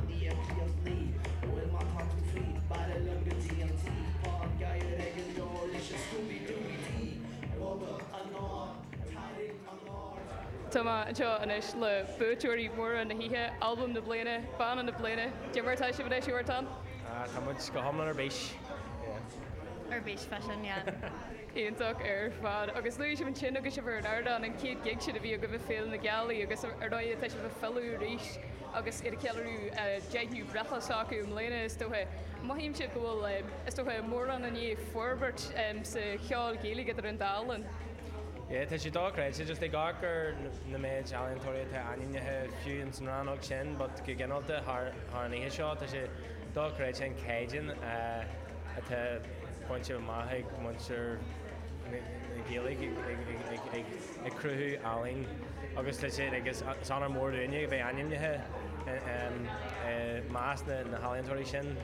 Bíodh fíos lí, a bhfuil má tá tú fríd baile liom go dtí an tí Tá an gadhar ag an gceo leis an Scooby Dooby Dee Bogadh anáil, tarraingt an aird, Tá mé anseo anois le buaiteoirí móra na hoíche, Albam na Bliana, Banna na Bliana, Cad é mar atá sibhse anois i ndiaidh an bhua. Ah, tá muid go hiomlán ar bís, yeah. Ar bís freisin, yeah. Iontach ar fad. Agus luaigh sibh ansin agus sibh ar an ardán, an chéad gig sin a bhí agaibh ag Féile na Gealaí agus ar ndóigh tá sibh ag filleadh arís. agus iad ag ceiliúradh a deichiú breithlá s'acu i mbliana, is dócha. Mothaíonn sé go bhfuil, is dócha, mórán i ndiaidh forbairt sa cheol Gaeilge in idir an dá linn. Yeah, tá sé dochreidte, just ag amharc ar na méid ealaíontóirí atá ainmnithe, fiú ins an rannóg sin, but go gineálta thar an oíche seo, tá sé dochreidte an caighdeán atá bainte amach ag muintir na Gaeilge ag. ag cruthú ealaín agus le sin agus is honóir mór dúinne a bheith ainmnithe i measc na healaíontóirí sin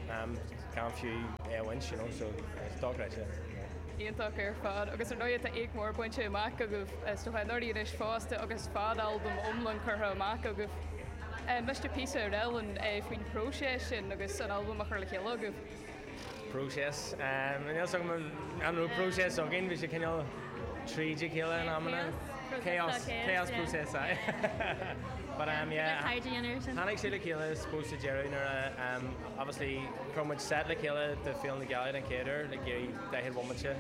gan fiú é a bhaint, you know, so it's dochreidte. Iontach ar fad agus ar ndóigh tá éacht mór bainte amach agaibh as bhur n-aonair anois fosta agus fadalbam iomlán curtha amach agaibh. Inis píosa dúinn faoin phróiseas sin agus an albam a chur le chéile agaibh. próiseas. Níl a fhios an raibh aon phróiseas againn, bhí sé cineál tríd a chéile in amanna. Chaos. Chaos process, aye. But um yeah, tháinig sé le chéile i suppose sa deireadh nuair a obviously chuir muid set le chéile do Féile na Gealaí den chéad uair le, dáiríre, daichead bhomaite.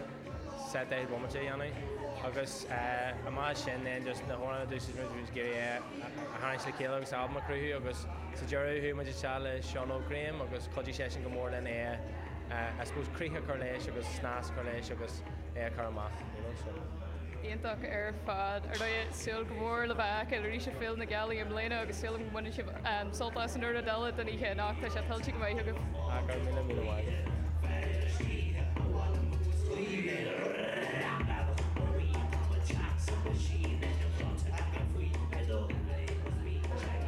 sa deichiú bomaite a dhéanamh agus amach as sin then just na hamhráin a d'úsáid muid bhí muid ag iarraidh é a tharraingt le chéile agus albam a chruthú agus sa deireadh chuaigh muid isteach le Seán Óg Graham agus chuidigh seisean go mór linn é a I suppose críoch a chur leis agus snas a chur leis agus é a chur amach you know so. Iontach ar fad. Ar ndóigh súil go mór le bheith arís ag Féile na Gealaí an léine agus súil agam go mbaineann sibh Sult as an chuid eile den oíche anocht. Tá sé tuillte go maith agaibh. Go raibh míle míle maith.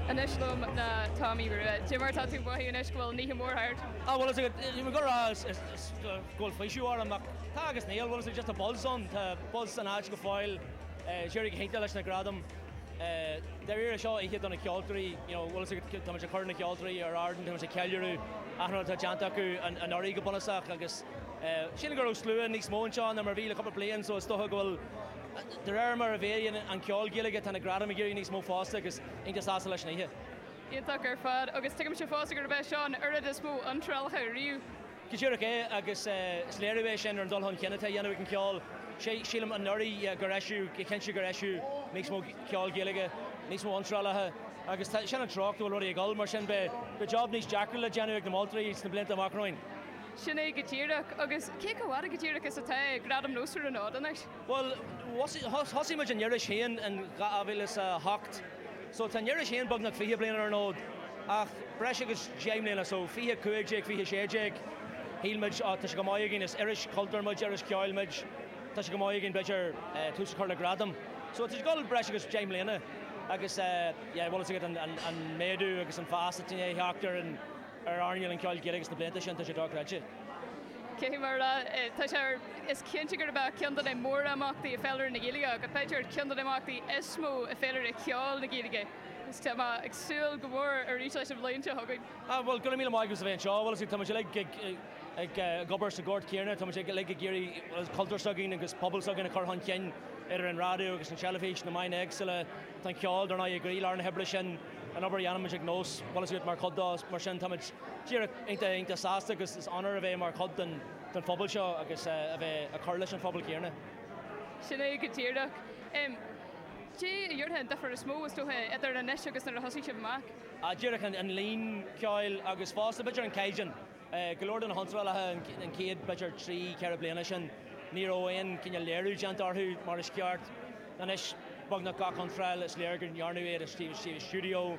Anois liom ná tá Emer Rua. Cad é mar atá tú ag mothú anois go bhfuil an oíche mhór thart? Á bhfuil 'fhios agat déarfainn go bhfuil faoiseamh orm ach tá agus níl, bhfuil 'fhios agat just a buzz ann. Tá buzz san áit go fóill. D'éirigh go hiontach leis na gradaim. Dáiríre, seo oíche do na ceoltóirí, you know, bhfuil 'fhios agat, táimid ag cur na ceoltóirí ar ard, táimid ag ceiliúradh achan rud atá déanta acu anuraidh go bunúsach agus sílim go raibh slua níos mó anseo ná mar a bhí le cúpla bliain so is dócha go bhfuil, de réir mar a mhéadaíonn an ceol Gaeilge, tá na gradaim ag éirí níos mó fosta agus iontach sásta leis an oíche. Iontach ar fad agus tuigimse fosta gurb é seo an méid is mó iontrálacha riamh. Go díreach é agus is léiriú é sin ar an dul chun cinn atá á dhéanamh ag an ceol. Sílim anuraidh gur eisíodh, go cinnte gur eisíodh níos mó ceol Gaeilge, níos mó iontrálacha agus tá, sin an treocht go bhfuil rudaí ag dul. Mar sin beidh beidh job níos deacra le déanamh ag na moltoirí sna blianta amach romhainn. Sin é go díreach. Agus cé chomh fhada go díreach is atá Gradaim NÓS ar an fhód anois? Bhuel, thosaigh muid an iris féin in 2008. So tá an iris féin beagnach fiche bliana ar an fhód ach breis agus deich mbliana, so fiche a cúig déag, fiche a sé déag shíl muid á tá sé chomh maith againn, is iris chultúir muid, iris cheoil muid, tá sé chomh maith againn b'fhéidir tús a chur le gradam. So tá sé ag dul breis agus deich mbliana agus yeah bhfuil a fhios agat an méadú agus an fás atá i ndiaidh a theacht ar an ar earnáil an cheoil Ghaelaigh sna blianta sin, tá sé dochreidte. Cé hé mar atá? Tá sé ar. Is cinnte gurb é ceann de na mórimeachtaí i féilire na Gaeilge, agus b'fhéidir ceann de na himeachtaí is mó i féilire cheoil na Gaeilge, agus tá mé ag súil go mór arís leis an bhliain seo chugainn. Ah, bhuel, gura míle maith agat as a bheith anseo. Bhuel, is é, táimid uilig ag, ag, ag obair sa ghort chéanna, táimid ag, uilig ag iarraidh, bhuel, an cultúr s'againn agus pobal s'againn a chur chun cinn, idir an raidió agus an teilifís, na meáin éagsúla, tá an ceol, dar ndóigh, i gcroílár na hoibre sin. an obair a dhéanaimid ag NÓS, bhuel is iad mar chuid de, mar sin táimid díreach iontach, iontach sásta agus is onóir a bheith mar chuid den, den phobal seo agus a bheith ag cur leis an phobal céanna. Sin é go díreach. Céard a déarfá an difear is mó, is dócha, idir anois agus nuair a thosaigh sibh amach? Díreach an líon ceoil agus fosta b'fhéidir an caighdeán. Go leor de na hiontrálacha an chéad, b'fhéidir, trí, ceithre bliana sin, ní raibh aon cineál léiriú déanta orthu mar is ceart. Anois, beagnach gach iontráil, is léir go ndearnadh iad i stíl stiúideo,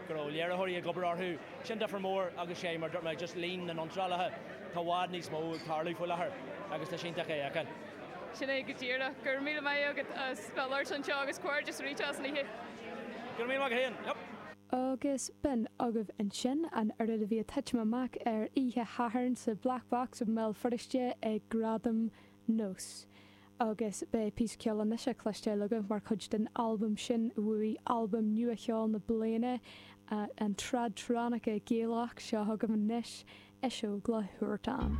go raibh léiritheoirí ag obair orthu. Sin difear mór agus is é, mar a dúirt mé, just líon na n-iontrálacha, tá i bhfad níos mó ag tarlú faoi láthair agus tá sé iontach é a fheiceáil. Sin é go díreach. Go raibh míle maith agat as bheith ag labhairt anseo agus comhghairdeas arís as an oíche. Go raibh míle maith agat féin. Yep. Agus b'in agaibh ansin an oiread a bhí ag titim amach ar oíche Shathairn sa Black Box i mBéal Feirste ag Gradaim NÓS. Agus beidh píosa ceoil anois á cloisteáil agaibh mar chuid den albam sin a bhuaigh Albam Nua Cheoil na Bliana, an tradtronica Gaelach seo chugaibh anois, Uiseog le Huartan.